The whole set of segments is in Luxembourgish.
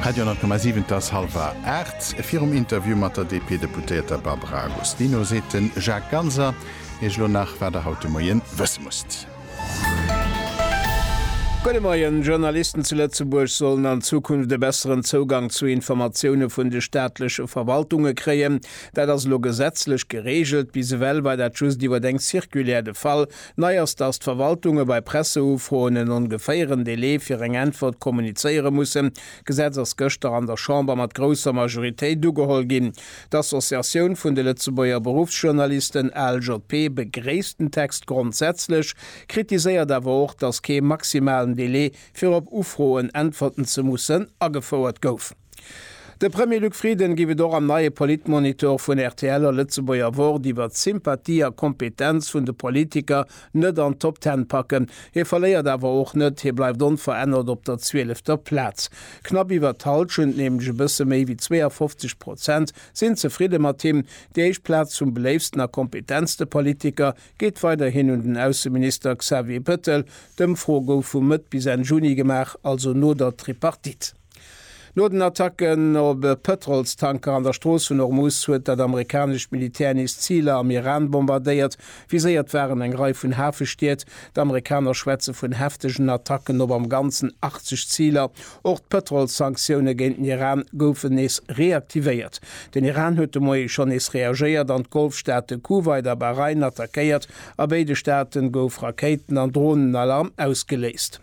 Radio 10,7 Et ass halwer aacht. Virum Interview mat der DP-Deputéierter Barbara Agostino seet de Jacques Ganser Iech elo nach, wat Der haut de Moien wësse musst. Gudde Moien. Journalisten zu Lëtzebuerg sollen an Zukunft e besseren Zougang zu Informatioune vun de staatleche Verwaltunge kréien. Dat ass elo gesetzlech gereegelt. Bis ewell war dat just iwwer eng Circulaire de Fall. Nei ass, datt d'Verwaltunge bei Presseufroen en ongeféieren Delai fir eng Äntwert kommunizéiere mussen. D'Gesetz ass gëschter an der Chamber mat grousser Majoritéit ugeholl ginn. D'Associatioun vun de Lëtzebuerger Beruffsjournalisten, ALJP, begréisst den Text grondsätzlech, kritiséiert awer och, datt kee maximalen Delai fir op Ufroen äntwerten ze mussen agefouert gouf. De Premier Luc Frieden géif et och am neie Politmonitor vun rtl a Lëtzebuerger Wort iwwert d'Sympathie a Kompetenz vun de Politiker net an d'Top Ten packen. Hie verléiert awer och net, hie bleift onverännert op der zwielefter Plaz. Knapp iwwert d'Hallschent, nämlech e bësse méi wéi 52 Prozent, sinn zefridde mat him. Déi éischt Plaz vum beléiftsten a kompetentste Politiker geet weiderhin un den Ausseminister Xavier Bettel. D'Ëmfro gouf vu Mëtt bis Enn Juni gemaach, also no der Tripartite. No den Attacken op e Pëtrolstanker an der Strooss vun Hormuz huet dat amerikanescht Militär nees Ziler am Iran bombardéiert. Viséiert waren eng Rei vun Hafestied. D'Amerikaner schwätze vun heftegen Attacken op am Ganzen 80 Ziler. Och d'Pëtrolssanktioune géint den Iran goufen nees reaktivéiert. Den Iran huet de Moie schonn nees reagéiert an d'Golfstaate Kuwait a Bahrain attackéiert. A béide Staate gouf Rakéiten an Dronenalarm ausgeléist.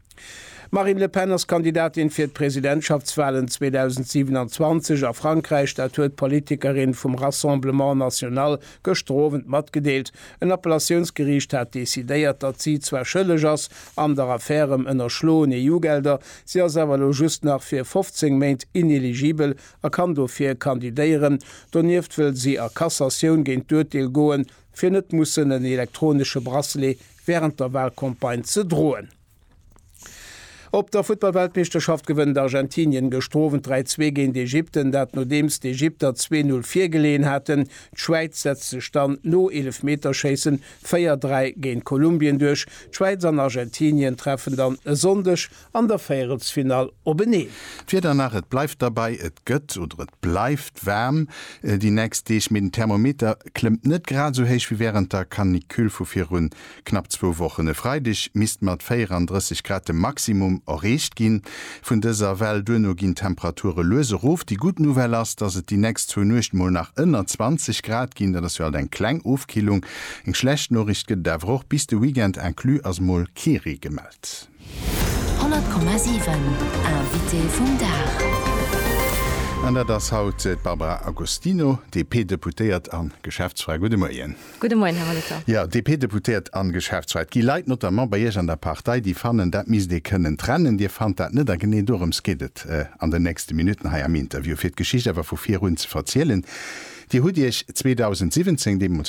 D'Marine Le Pen ass Kandidatin fir d'Presidentschaftswalen 2027 a Frankräich, dat huet d'Politikerin vum Rassemblement National gëschter Owend matgedeelt. En Appellatiounsgeriicht hat decidéiert, datt si zwar schëlleg ass an der Affär ëm ënnerschloen EU-Gelder, si ass awer elo just nach fir 15 Méint ineligibel a kann dofir kandidéieren. Donieft wëll si a Cassatioun géint d'Urteel goen. fir net mussen en elektronesche Bracelet wärend der Walcampagne ze droen. Op der Futtballweltmeeschterschaft gewënnt Argentinien gestrowent 3, 2 géint Ägypten, dat nodeems d'Ägypter zwee Null virgeleeën haten. D'Schwäiz setzt sech dann no Eelefmeterschéissen 4, 3 géint Kolumbien duerch. D'Schwäiz an Argentinien treffen dann e Sonndeg an der Véierelsfinall openeen. D'Wieder nach, Et bleift derbäi, et gëtt oder et bleift waarm déi nächst Deeg, mee den Thermometer klëmmt net grad esou héich wéi wärend der Canicule vu virun knapp zwou Wochen. E Freideg misst mat 34 Grad de Maximum erreecht gi vun dëser Well. Duerno ginn d'Temperature lues erof. Déi gutt Nouvelle ass, dass et déi nächst zwou Nuechten mol nach ënner 20 Grad ginn. Dat ass jo alt eng kleng Ofkillung. Eng schlecht Noriicht gëtt et awer och, Bis de Weekend inclus ass mol kee Ree gemellt. 100,7 Invité vum Dag. An dat ass haut d'Barbara Agostino, DP-Deputéiert a Geschäftsfra. Gudde Moien. Gudde Moien, Här Molitor. Jo, DP-Deputéiert a Geschäftsfra. Et gi Leit, notamment bei Iech an der Partei, déi fannen, dat misst ee kënnen trennen. Dir fannt dat net a genee dorëms geet et an den nächste Minutten hei am Interview, fir d'Geschicht awer vu virun ze verzielen. Dir hutt Iech 2017, deemools,